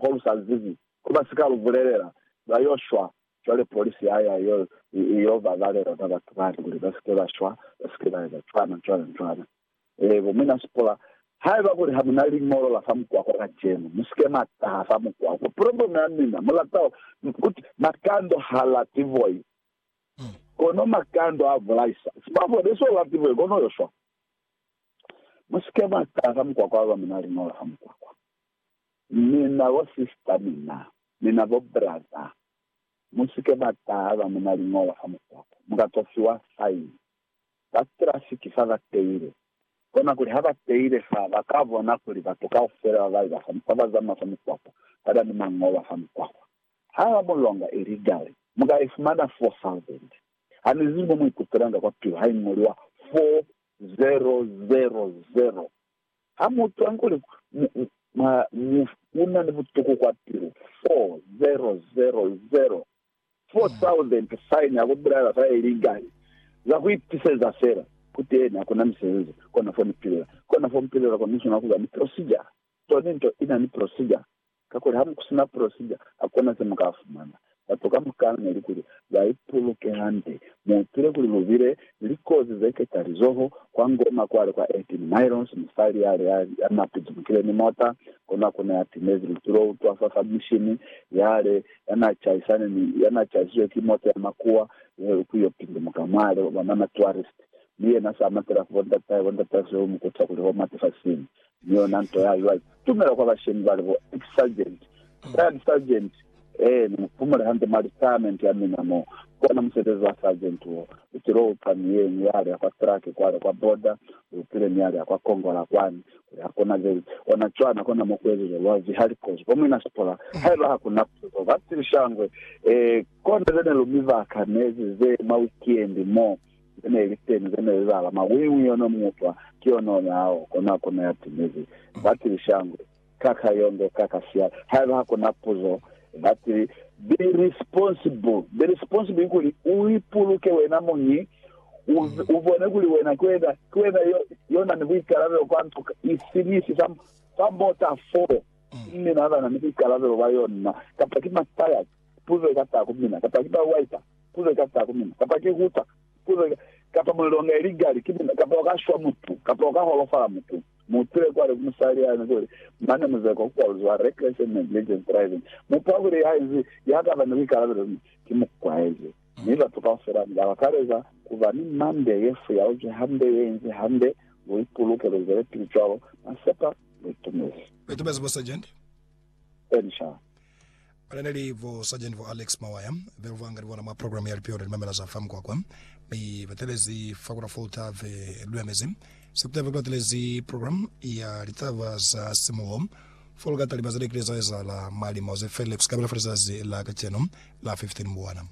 ko lu sa zibi, ko ba si ka lu bulelela, lwa yo shwa. Cwale polisi ha ya yo, i yo ba balela ba batu bale kuli ba si ke ba shwa, ba si ke ba eza cwana, cwana, cwana. Ee, bo Mwina Sipola, haiba kuli ha mu na liñolo la fa mukwakwa kacenu, mu si ke mwa taha fa mukwakwa. Probleme ya mina, mu lata kuti makando ha lati voi, kono makando a bulaisa. Sibafo ne so lati voi, kono yo shwa. Mu si ke mwa taha fa mukwakwa haiba mu na liñolo la fa mukwakwa. Mi na bo sister mina, mi na bo brother, mu si ke ba taha ba mu na liñolo ha mu taha, mu ka to fiwa fine. Ba traffic fa ba teile, kona kuli ha ba teile fa, ba ka bona kuli batu kaufela ba ba eza fa, ba ba zamaya fa mukwakwa, ba na ni mañolo a fa mukwakwa. Ha ba mu longa illegally, mu ka i fumana 4000. Ha ni zibi mo mu ikutwelanga kwa pilu ha i ñoliwa 4000. Ha mu twa kuli mu na ni butuku kwa pilu, 4000, 4000 sign ya ku bulaela fa illegal, za ku itiseza fela. Kuteni, ha ku na misebezi kona fo ni pilela. Kona fo mu pilela kona ni swanela ku ba ni procedure. Toni nto i na ni procedure. Kakuli ha ku si na prosija, ha ku na ze mu ka fumana. Batu ka mukana ne li kuli ba ipuluke hande. Mu hupile kuli lu bile ni likozi ze keta lizoho. Kwa Ngoma kwa li kwa 18 Miles, musali ya li ya na pizumukile ni mota, kono ku ne ya timezi litulo ku twa fa fa mishini ya li ya na chaisane ni ya na chaisizwe ki mota ya makuwa ye ku yo pindumuka mwa li bona na tourist. Mi yena sa matela ku bo ndatahe, bo ndatahe Sehumi ku twa kuli ho mati fa sini. Mi yona nto ya lwa itumela kwa bashemi bali bo ex sergeant, retired sergeant, Ee, ni mu pumule hande mwa retirement ya mina mo. Kona musebezi wa sergeant wo u tilo uca mi yenu ya lya kwa truck kwale kwa border, u pile mi ya lya kwa Kongola kwani, ku ya kona veli. Ona cwana kona mo kuezezwa lwa vihali kozi ko muina sipola, haiba ha ku na puzo, ba tilisha ngwe, Ee, kona ze ne lu mi baka nezi ze mwa wikiendi mo. ze ne li teñi ze ne li lala mwa wiñwi yo no mutwa ki yo no nyao, kona ku neya timezi. Ba tili, Shangwe, ka ka yonde, ka ka sia, haiba ha ku na puzo. Ba tili, Be responsible. Be responsible kikuli, u ipuluke wena muñi, u, u bone kuli wena ki wena, ki wena yo, yo na ni buikalabelo kwa nto ifi ni ifi fa, fa mota fo. Ki mina ba na ni buikalabelo bwa yona, kapa ki ma tires, puzo i ka taha ku mina, kapa ki ba wiper. Ku leka sa ku mina, kapa ki ku ta, ku leka, kapa mulelo onga ili gali ki mina, kapa uka shwa mutu, kapa uka holofala mutu. Mu utile kwale ku musali yani kuli, Mane muzeko ku kwaluziwa reckless and negligent driving. Mu pa kuli ya inzi ya kaba ni buikalabelo mi ki mukwaezi. Mi batu kaufela ni ka bakaleza kuba ni mande ye fuyauzwi hande, ye inzi hande. Lu ipuluke, lu zwelepili cwalo, masepa, lu itumezi. Lu itumezi, Bo Sergeant. Elisha. Bana ne li bo Sergeant bo Alex Mawaya, be ba nga ni bona mwa program ya Lipio la Limamela za fa Mukwakwa, mi ba telezi fa ku la Fort Ave Lulamezi. Sekutani ba latelezi program ya litaba za simuho fo lu ka talima ze ne kile za ezahala mwa limo ze felile ku sikabela fa lizazi la kacenu la 15 Mbwana.